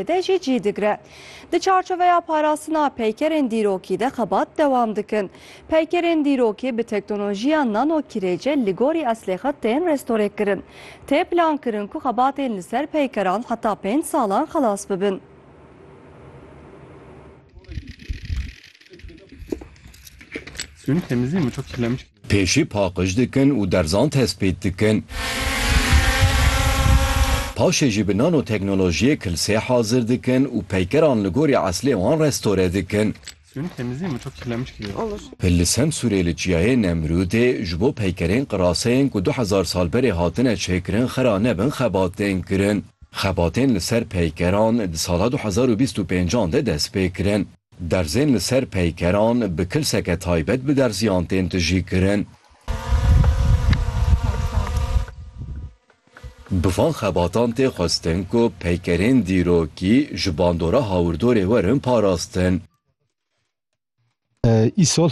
de jî cî digre. Di çarçoveya parastina peykerên dîrokî de xebat dewam dikin. Peykerên dîrokî bi teknolojiya nano kirêce li gorî eslê xwe tên restorêkirin. Tê plankirin ku xebatên li ser peykeran heta pênc salan xelas bibin. Pêşî paqij dikin û derzan tespît dikin. Paşê jî bi nanoteknolojiyê kilsê hazir dikin û peykeran li gorî eslê wan restore dikin. Li Semsûrê li Çiyayê Nemrûdê ji bo peykerên qiraseyên ku du hezar sal berê hatine çêkirin xera nebin xebat tên kirin. Xebatên li ser peykeran di sala du hezar û bîst û pênc an de dest pê kirin. Derzên li ser peykeran bi kilseke taybet bi derziyan tên tijîkirin. Bi van xebatan tê xwestin ku peykerên dîrokî ji bandora hawirdorê werin parastin. Îsal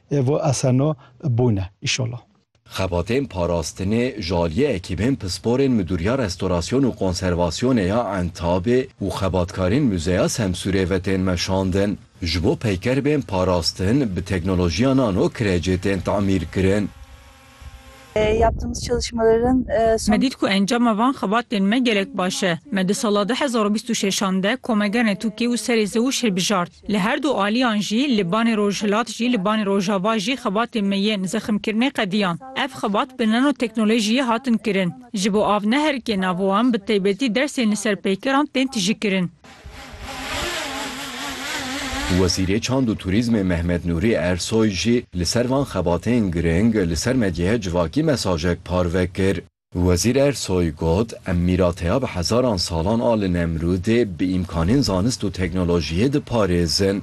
Evo asano bûne îşollah. Xebatên parastinê ji aliyê ekîbên pisporên Midûriya Restorasyon û Konservasyonê ya Entabê û xebatkarên Muzeya Semsûrê ve tên meşandin. Ji bo peyker bên parastin bi teknolojiya nano kirecê tên tamîrkirin. Me dît ku encama van xebatên me gelek baş e. Me di sala du hezar û bîst û şeş an de komege netûkê û serê zewij hilbijart. Li her du aliyan jî li banê rojhilat jî li banê rojava jî xebatên me yên zeximkirinê qediyan. Ev xebat bi nanoteknolojiyê hatin kirin. Ji bo av neherike nava wan bi taybetî dersên li ser peykeran tên tijîkirin. Wezîrê Çand û Turîzmê Mehmet Nûrî Ersoy jî li ser van xebatên girîng li ser medyaya civakî mesajek parve kir. Wezîr Ersoy got, Em mîrateya bi hezaran salan a li Nemrûdê bi îmkanên zanist û teknolojiyê diparêzin.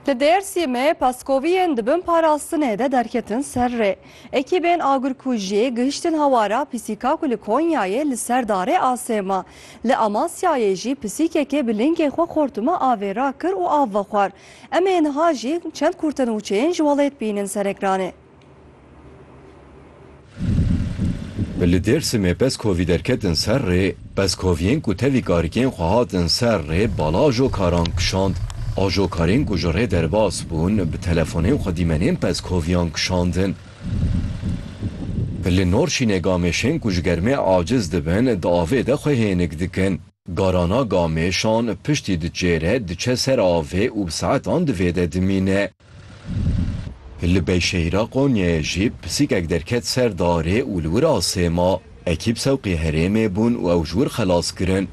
Li Dêrsîmê peskoviyên di bin parastinê de derketin ser rê. Ekîbên agirkujiyê gihiştin hewara pisîka ku li Konyayê li ser darê asêma. Li Amasyayê jî pisîkekê bi lingê xwe xortuma avê rakir û av vexwar. Em ê niha jî çend kurtenûçeyên ji welêt bînin ser ekranê. Li Dêrsimê peskovî derketin ser rê, peskoviyên ku tevî karikên xwe hatin ser rê bala ajokaran kişand. Ajokarên ku ji rê derbas bûn bi telefonên xwe dîmenên peskoviyan kişandin. Li Norşînê gamêşên ku ji germê aciz dibin di avê de xwe hênik dikin. Garana gamêşan piştî di çêre diçe ser avê û bi saetan di vê de dimîne. Li beyşehîra Konyayê jî pisîkek derket ser darê û li wir asê ma. Ekîb sewqî herêmê bûn û ew ji wir xelas kirin.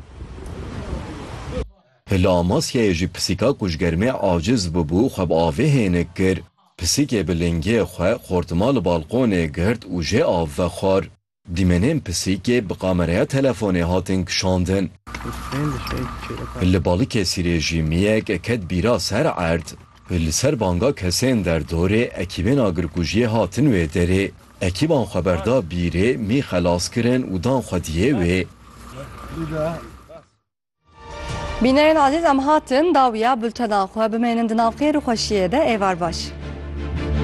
Li Amasyayê jî pisîka ku ji germê aciz bûbû xwe bi avê hênik kir. Pisîkê bi lingê xwe xortima li balqonê girt û jê av ve xwar. Dîmenên pisîkê bi kameraya telefonê hatin kişandin. Li Balikesîr ê jîmiyek ket bîra ser erd. Li ser banga kesên derdorê ekîbên agirkujiyê hatin wê derê. Ekîban xweberda bîrê mî xelas kirin û dan xwediyê wê. Bîneyên ezîz em hatin dawiya bultenan xwe bimênin di nav xêr û xweşiyê de êvar baş.